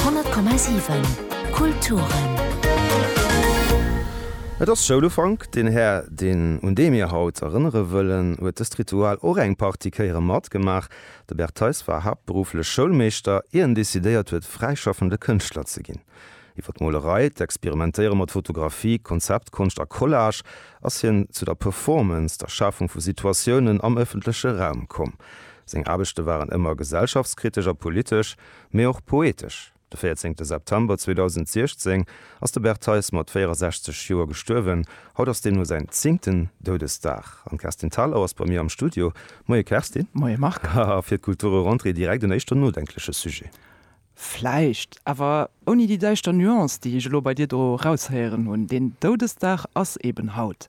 100,7 Kulturen. Et ass Schoulufank. Den Här, deen un dee mir haut erënnere wëllen, huet dëst Ritual och eng Partie Kéiere matgemaach. De Bert Theis war haaptberufflech Schoulmeeschter, ier en decidéiert huet, fräischaffende Kënschtler ze ginn. Iwwer d'Molerei, d'Experimentéiere mat Fotografie, Konzeptkonscht a Collage ass hien zu der Performance, der Schafung vu Situatiounen am ëffentleche Raum komm. Seng Aarbechte waren ëmmer gesellschaftskritesch a politesch, mee och poetesch. De 14 de September 2016 ass de Bert Theis mat 64 Joer gestuerwen. Haut ass deemno säin zéngten Doudesdag an d'Kerstin Thalau ass bei mir am Studio. Moie Kerstin. Moie Marc. A fir d'Kulturrentrée direkt en éischter nodenkleche Sujet. Vläicht, awer ouni déi däischter Nuance, déi ech elo bei dir do raushéieren hunn. Deen Doudesdag ass eben haut.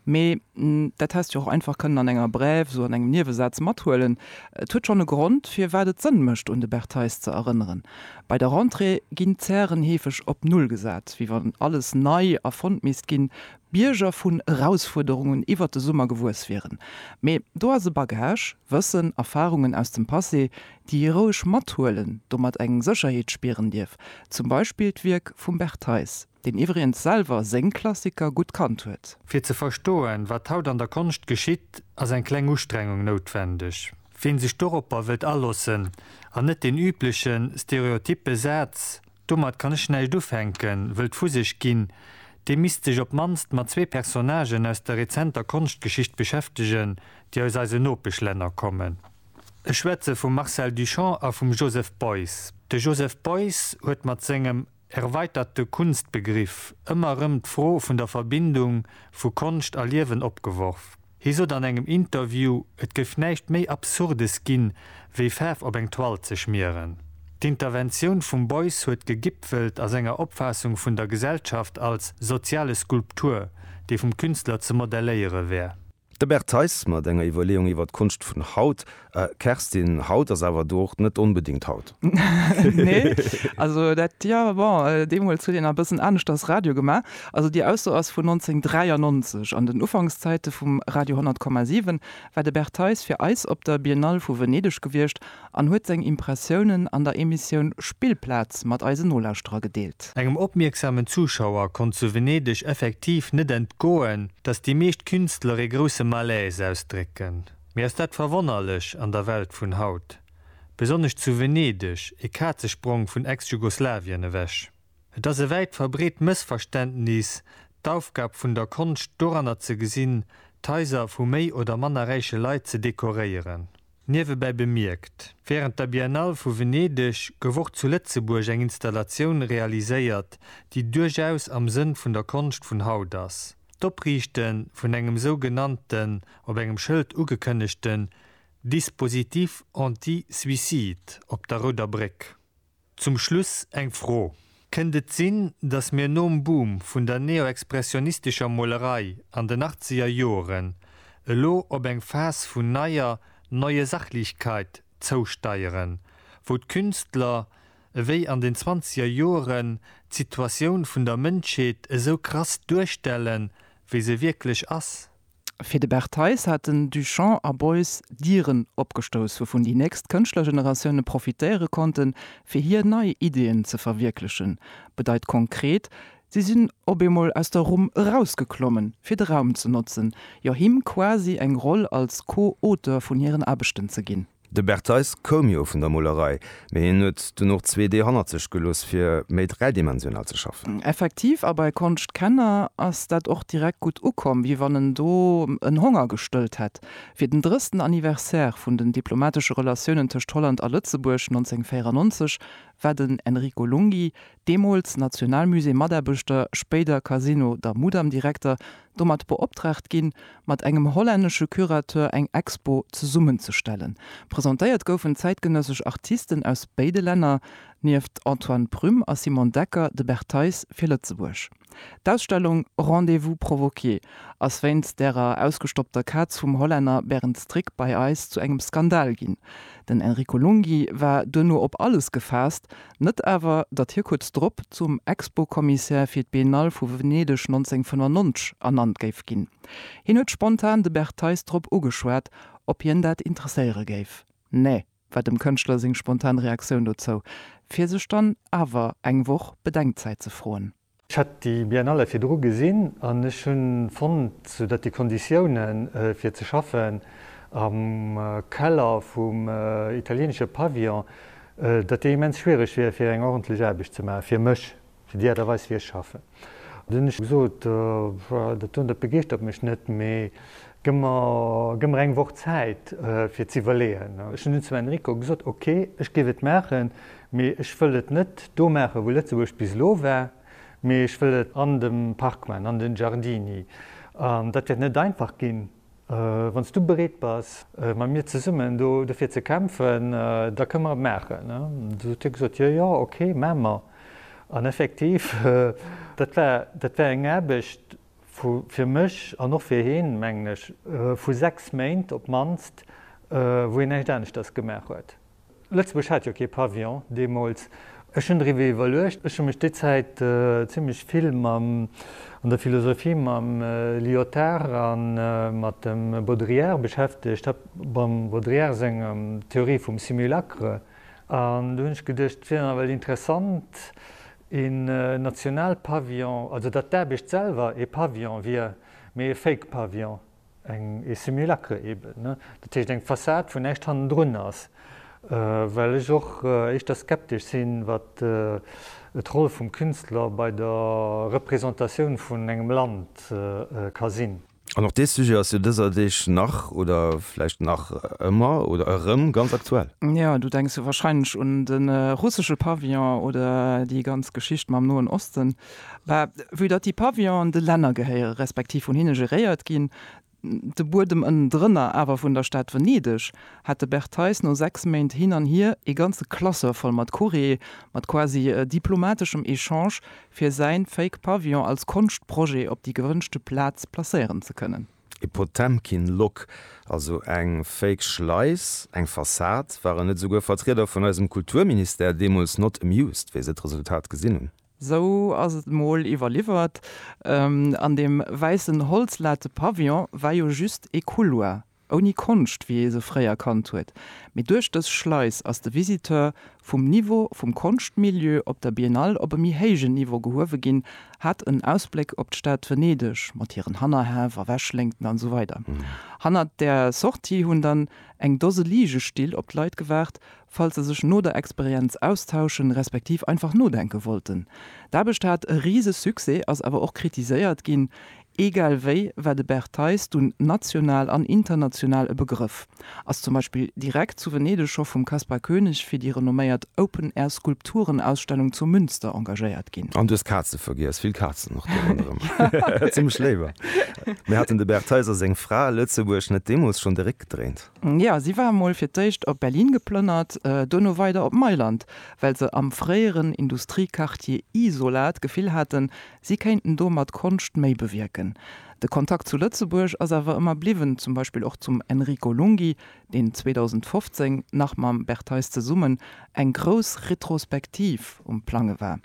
Mee dat häss de jo och einfach kënnen an enger Brève, esou an engem Niewesaz mathuelen. Et huet schonn e Grond, firwat et Sënn mécht, un de Bertheis ze erënneren. Bei der Rentrée ginn d'Zären heefeg op Null gesat, wéi wann alles nei erfonnt misst ginn, Bierger vun Erausfuerderungen iwwert de Summer gewuess wieren. Mee do ass e Bagage. Wëssen, Erfarungen aus dem Passé, déi ee roueg mathuelen, domat eng Sécherheet spieren dierf. Zum Beispill d'Wierk vum Bert Theis, deen iwwregens selwer seng Klassiker gutt kannt huet. Fir ze verstoen, wat haut an der Konscht geschitt, ass eng kleng Ustrengung noutwendeg. Wien sech doropper wëllt alossen, an net deen üblechen, stereotyppe Saz, Domat kann ech näischt ufänken, wëll d'Fusecht ginn, dee misst sech op d'mannst mat zwee Personnagen aus der rezenter Konschtgeschicht beschäftegen, déi aus eisen Nopeschlänner kommen. Ech schwätze vum Marcel Duchamp a vum Joseph Beuys. De Joseph Beuys huet mat sengem erweiterte Kunstbegriff ëmmer erëm d'Fro vun der Verbindung vu Konscht a Liewen opgeworf. Hie sot an engem Interview, et géif näischt méi Absurdes ginn, wéi Faarf op eng Toile ze schmieren. D'Interventioun vum Beuys huet gegipfelt a senger Opfaassung vun der Gesellschaft als soziale Skulptur, déi vum Künstler ze modelléiere wär. De Bert Theis mat enger Iwwerleeung iwwer d'Konscht vun haut, Kerstin, haut ass awer doocht net onbedingt haut. Nee, also dat, jo bon, deemools huet een a bëssen aneschters Radio gemaach. Also déi Ausso ass vun 1993. An den Ufankszäite vum Radio 100,7 war de Bert Theis fir eis op der Biennale vu Venedeg gewiescht an huet seng Impressiounen an der Emissioun Spillplaz mat eisen Nolauschterer gedeelt. Engem opmierksamen Zuschauer konnt zu Venedeg effektiv net entgoen, datt déi meescht Künstler ee grousse Malaise ausdrécken. Mee ass dat verwonnerlech an der Welt vun haut? Besonnesch zu Venedeg, e Kazesprong vun Ex-Jugoslawien ewech. Et ass e wäit verbreet Mëssverständnis, d'Aufgab vun der Konscht doranner ze gesinn, d'Haiser vu méi oder manner räiche Leit ze dekoréieren. Niewebäi bemierkt, Wärend der Biennale vu Venedeg gouf och zu Lëtzebuerg eng Installatioun realiséiert, déi duerchaus am Sënn vun der Konscht vun haut ass. D'Opriichte vun engem sou genannten, op engem Schëld ugekënnegten Dispositif anti-suicide op der Rouder Bréck. Zum Schluss eng Fro, Kënnt et sinn, datt mir nom Boom vun der neoexpressionistescher Molerei an den achtzeger Joren elo op eng Phas vun neier Neue Sachlichkeit zousteieren, wou d'Künstler, ewéi an den zwanzeger Joeren, d'Situatioun vun der Mënschheet esou krass duerstellen, wéi se wierklech ass. Fir de Bert Theis hat den Duchamp a Beuys Dieren opgestouss, wouvun déi nächst Kënschtlergeneratioune profitéiere konnten, fir hir nei Ideeën ze verwierklechen. Bedeit konkret, Si sinn op eemol aus der Rumm erausgeklommen, fir de Raum ze notzen, jo him quasi eng Roll als Co-Auteur vun hiren Aarbechten ze ginn. De Bertheis koum jo vun der Molerei, mee hien huet dunn och zwee Deeg hannert sech gelooss, fir méi dräidimensional ze schaffen. Effektiv, a bei Konschtkenner ass dat och direkt gutt ukomm, wéi wann en do en Honger gestëllt hätt. Fir den drëssten Anniversaire vun den diplomatesche Relatiounen tëscht Holland a Lëtzebuerg 1994 war den Enrico Lunghi deemools Nationalmusée-Mataarbechter, spéider Casino der Mudam-Direkter, domat beoptraagt ginn, mat engem hollännesche Curateur eng Expo zesummenzestellen. Presentéiert goufen zäitgenëssesch Artisten aus béide Länner, nieft Antoine Prüm a Simon Decker, de Bertheis fir Lëtzebuerg. D'Ausstellung Rendez-vous provoqué ass wéinst därer ausgestoppter Kaz vum Hollänner Berend Strik bei eis zu engem Skandal ginn. Den Enrico Lunghi war duerno op alles gefaasst, net awer, datt hie kuerz drop zum Expo-Commissaire fir d'Biennale vu Venedeg 1995 ernannt géif ginn. Hien huet spontan de Bert Theis drop ugeschwat, ob hien dat interesséiere géif. Nee! war dem Kënschtler seng spontan Reaktioun dozou, fir sech dann awer eng Woch Bedenkzäit ze froen. Ech hat déi Biennale virdru gesinn an ech hu fonnt, datt déi Konditioune fir ze schaffen am Keller vum italieenesche Pavillon, datt déi immens schwiereg wier fir eng ordentlech Aarbecht ze maachen, fir mech Fir déi Aart a Weis, wéi ech schaffen. Da hunn ech gesot, Dat do, dat begeeschtert mech net, mee gëmm mer eng Woch Zäit, fir ze iwwerleeën. Ech hunn dunn zum Enrico gesot, Ok, ech géif et maachen, mee ech wëll et net do maachen, wou Lëtzebuerg bis elo war, mee ech wëll et an dem Park maachen, an de Giardini. An dat wäert net einfach ginn. Wann s du bereet bass, mat mir zesummen do dofir ze kämpfen, da kënne mer et maachen. Du huet hie gesot, Jo, jo, ok, maache mer. An effektiv, dat war, dat war eng Aarbecht vu, fir mech an och fir hien, mengen ech, vu sechs Méint op d'mannst, wou hien näischt aneschters gemaach huet. Lëtzebuerg hat jo kee Pavillon deemools. Ech hunn driwwer iwwerluecht. Ech hu mech déi Zäit zimlech vill mam, an der Philosophie, mam Lyotard a mat dem Baudrillard beschäftegt, hat mam Baudrillard senger Theorie vum Simulacre. An do hunn ech geduecht, et wier dann ewell interessant, een Nationalpavillon, also datt d'Aarbecht selwer ee Pavillon wier, mee ee Fake-Pavillon. Eng e Simulacre eben, ne? Dat heescht eng Fassad, wou näischt hannendrun ass. Well ech och éischter skeptesch sinn, wat d'Roll vum Künstler bei der Représentatioun vun engem Land ka sinn. An och dee Sujet ass jo dëser Deeg nach, oder vläicht nach ëmmer, oder erëm, ganz aktuell. Jo, du denks jo wahrscheinlech un de russesche Pavillon oder déi ganz Geschicht mam Noen Osten. Bah, vue datt déi Pavillon de Länner gehéieren, respektiv vun hinne geréiert ginn, de Buedem ënnendrënner awer vun der Stad Venedeg, hat de Bert Theis no sechs Méint hin an hier ee ganze Classeur voll mat Courriere, mat quasi diplomateschem Echange, fir säin Fake Pavillon als Konschtprojet op déi gewënschte Plaz placéieren ze kënnen. E Potemkin Lock, also eng Fake Schleis, eng Fassad, waren net esouguer Vertrieder vun eisem Kulturministère deemools not amused, wéi se d'Resultat gesinn hunn. Sou ass et mol iwwerliwwert. An deem wäissen holzlate Pavillon war jo just ee Couloir, ouni Konscht, wéi ee se fréier kannt huet. Mee duerch dës Schleis ass de Visiteur vum Niveau vum Konschtmilieu op der Biennale op e méi héijen Niveau gehuewe ginn, hat en Ausbléck op d'Stad Venedeg mat hiren Hannerhäff a Wäschléngten an esou weider Hannert der Sortie hunn dann eng Dose Ligestill op d'Leit gewaart, falls se sech no der Experienz austauschen, respektiv einfach nodenken wollten. D'Aarbecht hat e rise Succès, ass awer och kritiséiert ginn. Eegal wéi war de Bert Theis dunn national an international e Begrëff. Ass zum Beispill direkt zu Venedeg scho vum Kaspar Koenig fir déi renomméiert Open Air Skulpturenausstellung zu Münster engagéiert ginn. An du hues Kazen vergiess, vill Kazen och do ronderëm. Zimmlech léiwer. Mee haten de Bert Theis a seng Fra Lëtzebuerg net deemools schonn de Réck gedréint? Jo, si war mol fir d'éischt op Berlin geplënnert, dono weider op Mailand, well se am fréieren Industriequartier Isola d'Gefill haten, si kéinten do mat Konscht méi bewierken. De Kontakt zu Lëtzebuerg ass awer ëmmer bliwwen, zum Beispill och zum Enrico Lunghi, deen 2015 nach mam Bertheis zesummen eng grouss Retrospektiv um Plange war.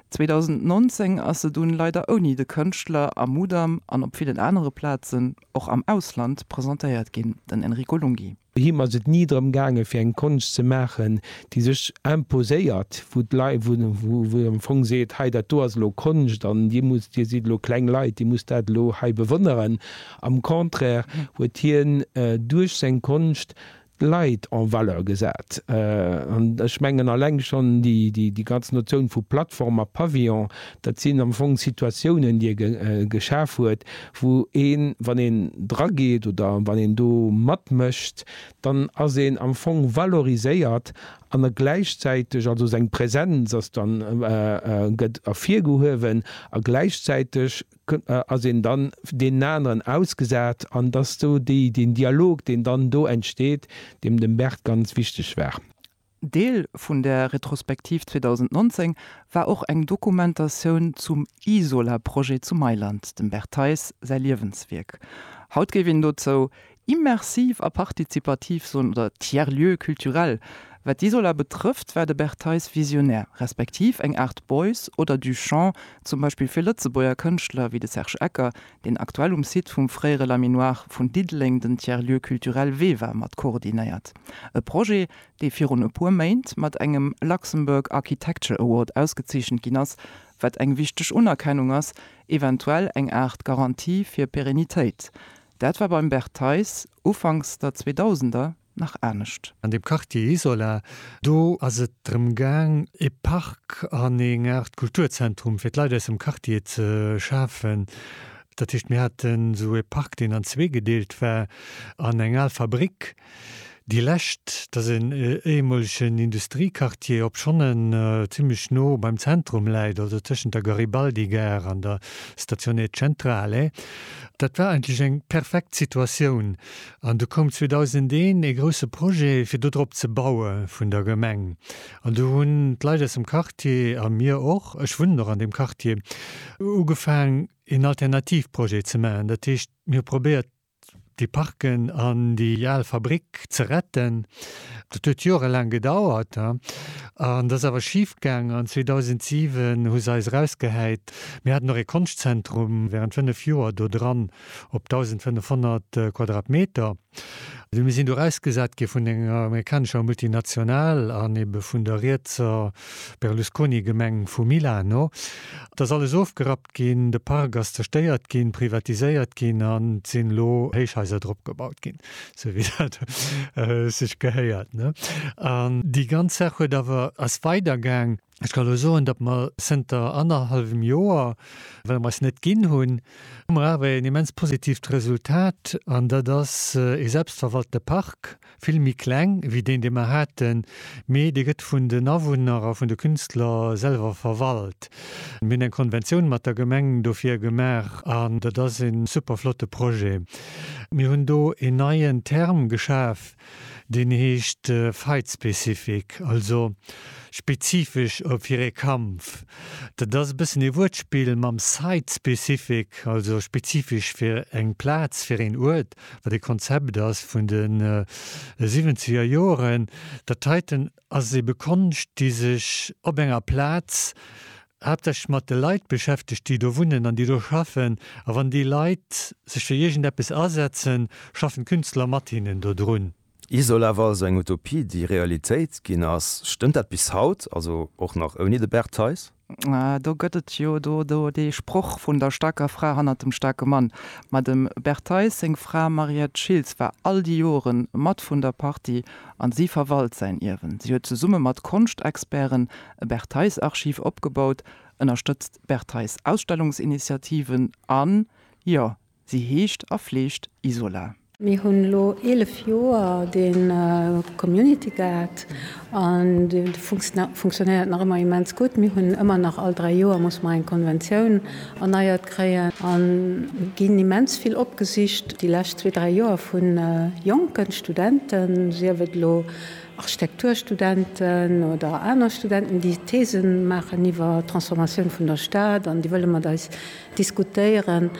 2019 ass se dunn leider ouni de Kënschtler a Mudam an op villen anere Plazen och am Ausland presentéiert ginn, den Enrico Lunghi. Him ass et ni drëm gaangen, fir eng Konscht ze maachen, déi sech imposéiert, wou d'Leit, wou ee am Fong seet, hei dat do ass elo Konscht an dir musst, dir sidd elo kleng Leit, dir musst dat elo hei bewonneren. Am Contraire huet hien duerch seng Konscht Leit en valeur gesat. An ech mengen alleng schonn déi ganz Notioun vu Plattform a Pavillon, dat sinn am Fong Situatiounen, déi e geschaf huet, wou een, wann een dra geet oder wann een do matmécht, dann ass een am Fong valoriséiert an e gläichzäiteg, also seng Präsenz ass dann, gëtt ervirgehuewen a gläichzäiteg ass een dann deenen aneren ausgesat an et ass do déi deen Dialog deen dann do entsteet, deem dem Bert ganz wichteg war. Deel vun der Retrospektiv 2019 war och eng Dokumentatioun zum Isola-Projet zu Mailand, dem Bert Theis säi Liewenswierk. Haut géif een dozou Immersiv a partizipativ Zonen oder Tiers-lieux culturels, Wat d'Isola betrëfft, war de Bert Theis visionär, respektiv eng Aart Bois oder Duchamp zum Beispill fir Lëtzebuerger Kënschtler wéi de Serge Ecker, deen aktuell um Site vum fréiere Laminoir vun Diddeleng den Tiers-lieu culturel Veva mat koordinéiert. E Projet, dee virun e puer Méint mat engem Luxembourg Architecture Award ausgezeechent ginn ass, wat eng wichteg Unerkennung ass, eventuell eng Aart Garantie fir Perennitéit. Dat war beim Bert Theis ufanks der Zweedausender nach anescht. An deem Quartier Isola do ass et drëm gaang, e Park an eng Aart Kulturzentrum fir d'Leit aus dem Quartier ze schafen. Dat heescht, mir haten esou e Park, deen an zwee gedeelt war, an eng al Fabrik, Déi lescht, dat ass en éiemolegen Industriequartier, obschonn en zimmlech no beim Zentrum läit, also tëschent der Garibaldi-Gare an der Stazione Centrale. Dat war eigentlech eng perfekt Situatioun. An du koum 2001 ee grousse Projet, fir do drop ze baue vun der Gemeng. An du hunn d'Leit aus dem Quartier, a mir och, ech wunnen och an deem Quartier, ugefaang een Alternativprojet ze maachen. Dat heescht, mir hu probéiert, déi Parken an déi al Fabrik ze retten. Dat huet jorelaang gedauert an dat ass awer schifgaang an 2007 hu se eis erausgehäit. Mir haten och ee Konschtzentrum wärend fënnef Joer do dran op 1.500 Quadratmeter. Mir sinn do erausgesat gi vun enger amerikanescher Multinational an ebe vun der rietser Berlusconi, Gemeng vu Milano, Et ass alles ofgerappt ginn, de Park ass zerstéiert ginn, privatiséiert ginn an et sinn elo Héichhaiser drop gebaut ginn, esou wéi dat sech gehéiert. An déi ganz Saach huet awer, ass weidergaang. Ech ka elo soen, datt mer zënter annerhallwem Joer, well mer eis net ginn hunn, hu mer awer een immens positiivt Resultat an dat ass ee selbstverwalte Park, vill méi kleng wéi deen dee mer haten, mee dee gëtt vun den Awunner a vun de Künstler selwer verwalt. Mir hunn eng Konventioun mat der Gemeng dofir gemaach an dat ass e super flotte Projet. Mir hunn do en neien Term geschaf, deen heescht Fight-Specific, also spezifesch fir ee Kampf. Dat ass e bëssen ee Wuertspill mam Site-Specific, also spezifesch fir eng Plaz, fir een Uert. wat e Konzept ass vun de siwwenzeger Joren, dat heiten ass ebe Konscht, déi sech op enger Plaz haaptsächlech mat de Leit beschäftegt, déi do wunnen an déi do schaffen. A wann déi Leit sech fir iergendeppes asetzen, schaffen d'Künstler mat hinnen dodrun. Isola war also eng Utopie, déi Realitéit ginn ass. Stëmmt dat bis haut, also och nach ouni de Bert Theis? Do gëtt et jo do dee Sproch vun der staarker Fra hannert dem staarke Mann. Ma dem Bert Theis seng Fra Mariette Schiltz war all déi Jore mat vun der Partie an si verwalt säin Ierwen. Si huet zesumme mat Konschtexperten e Bert Theis-Archiv opgebaut, ënnerstëtzt Bert Theis-Ausstellungsinitiativen an, jo, Si heescht a fleegt Isola. Mir hunn elo 11 Joer de Community Guard an de funktionéiert nach ëmmer immens gutt. Mir hunn ëmmer nach, all dräi Joer muss mer eng Konventioun erneiert kréien an ginn immens vill opgesicht déi lescht zwee, dräi Joer vu jonken Studenten, sief et elo Architekturstudenten oder aner Studenten, déi Thesen maachen iwwer d'Transformatioun vun der Stad an déi wëlle mat eis diskutéieren,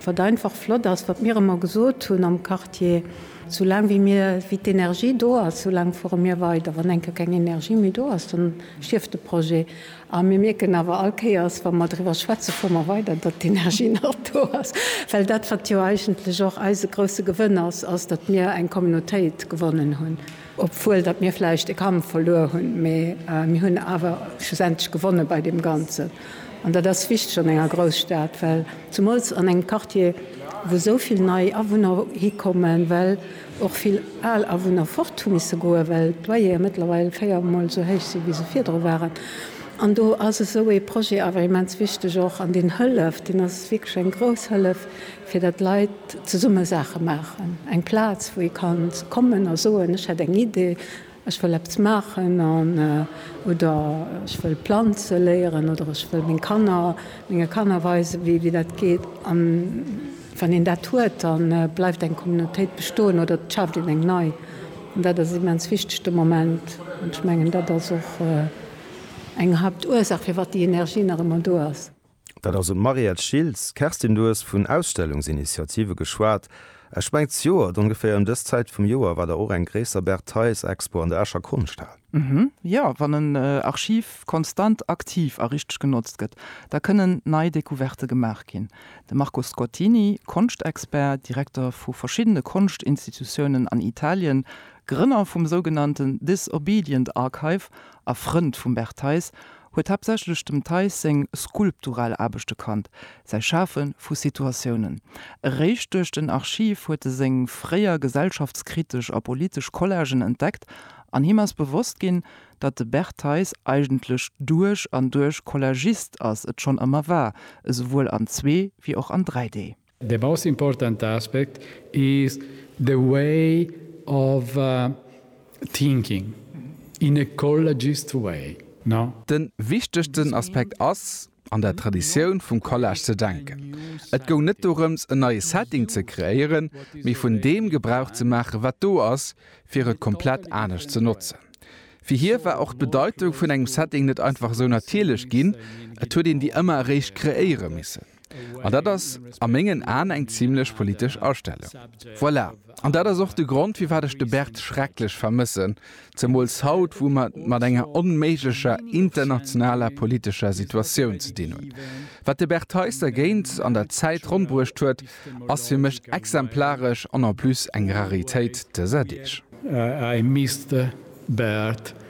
wat einfach flott ass, wat mir ëmmer gesot hunn am Quartier, sou laang wéi mir, wéi d'Energie do ass, sou laang fuere mir weider, wann eng Kéier keng Energie méi do ass, dann stierft de Projet. A mir mierken awer all Kéiers, wa mer driwwer schwätzen, fuere mer weider, datt d'Energie nach do ass, well dat, wat jo eigentlech och eise grouse Gewënn ass, ass, datt mir eng Communautéit gewonnen hunn. Obwuel datt mir vläicht e Kampf verluer hunn, mee mir hunn awer schlussendlech gewonne bei deem Ganzen. An dat ass wichteg an enger Grousstad, well zumools an engem Quartier, wou esou vill nei Awunner hikommen, well och vill al Awunner fort hu misse goen, well d'Loyere mëttlerweil véier Mol esou héich sinn, wéi se virdru waren. An do ass esou ee Projet awer immens wichteg och. An deen hëlleft, deen ass wierklech eng grouss Hëllef fir dat d'Leit zesumme Saache maachen, eng Plaz wou ee ka kommen a soen, ech hätt eng Idee, ech wëll eppes maachen an oder ech wëll planze léieren oder ech wëll meng Kanner menge Kanner weisen, wéi dat geet. An wann een dat huet, da bleift eng Communautéit bestoen oder et schaaft een eng nei. An dat ass immens wichteg de Moment an ech mengen, dat ass och eng Haaptursaach, firwat déi Energie nach ëmmer do ass. Dat ass un d'Mariette Schiltz. Kerstin, du hues vun Ausstellungsinitiative geschwat. Ech mengen z'Joert, ongeféier ëm dës Zäit vum Joer, war der och eng gréisser Bert Theis-Expo an der Escher Konschthal. Jo, wann en Archiv konstant aktiv a richteg genotzt gëtt, da kënnen nei Decouverte gemaach ginn. De Marco Scottini, Konschtexpert, Direkter vu verschiddene Konschtinstitutiounen an Italien, Grënner vum sougenannten Disobedient Archive a Frënd vum Bert Theis, huet haaptsächlech dem Theis seng skulptural Aarbechte kannt, säi Schafe vu Situatiounen. Eréischt duerch den Archiv huet e seng fréier gesellschaftskritesch a politesch Collagen entdeckt an him ass bewosst ginn, datt de Bert Theis eigentlech duerch an duerch Collagist ass, et schonn ëmmer war, esouwuel an zwee wéi och an 3 Dee. The most important aspect is the way of thinking in ecologist way, no? De wichtegsten Aspekt ass, an der Traditioun vum Collage ze denken. Et goung net dorëms, en neie Setting ze kreéieren, mee vun deem Gebrauch ze maachen, wat do ass, fir et komplett anescht ze notzen. Fir hie war och d'Bedeitung vun engem Setting net einfach esou natierlech ginn, et huet een déi ëmmer eréischt kreéiere missen. An dat ass a mengen Aen eng zimlech politesch Astellung. Voilà, an dat ass och de Grond, firwat ech de Bert schrecklech vermëssen, zemools haut, wou mer et mat enger onméiglecher internationaler politescher Situatioun ze dinn hunn. Wat de Bert Theis dergéint an der Zäit rondbruecht huet, ass fir mech exemplaresch an en plus eng Raritéit dëser Deeg. I missed the Bert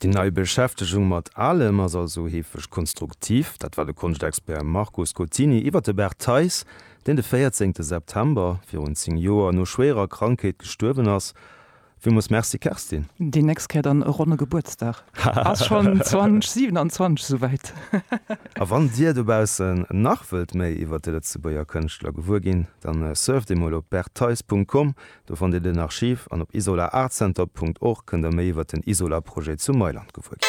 Déi nei Beschäftegung mat Alem ass also heefeg konstruktiv. Dat war de Konschtexpert Marco Scottini iwwer de Bert Theis, deen de 14 de September virun 10 Joer no schwéierer Krankheet gestuerwen ass. Villmols Merci Kerstin. Déi nächst Kéier dann e ronne Gebuertsdag. Ass schonn 2027 esouwäit. A wann dir dobaussen nach wëllt méi iwwer de Lëtzebuerger Kënschtler gewuer ginn, dann surft emol op berttheis.com Do fannt Dir den Archiv an op isolaartcenter punkt org kënnt der méi iwwer den Isola-Projet zu Mailand gewuer ginn.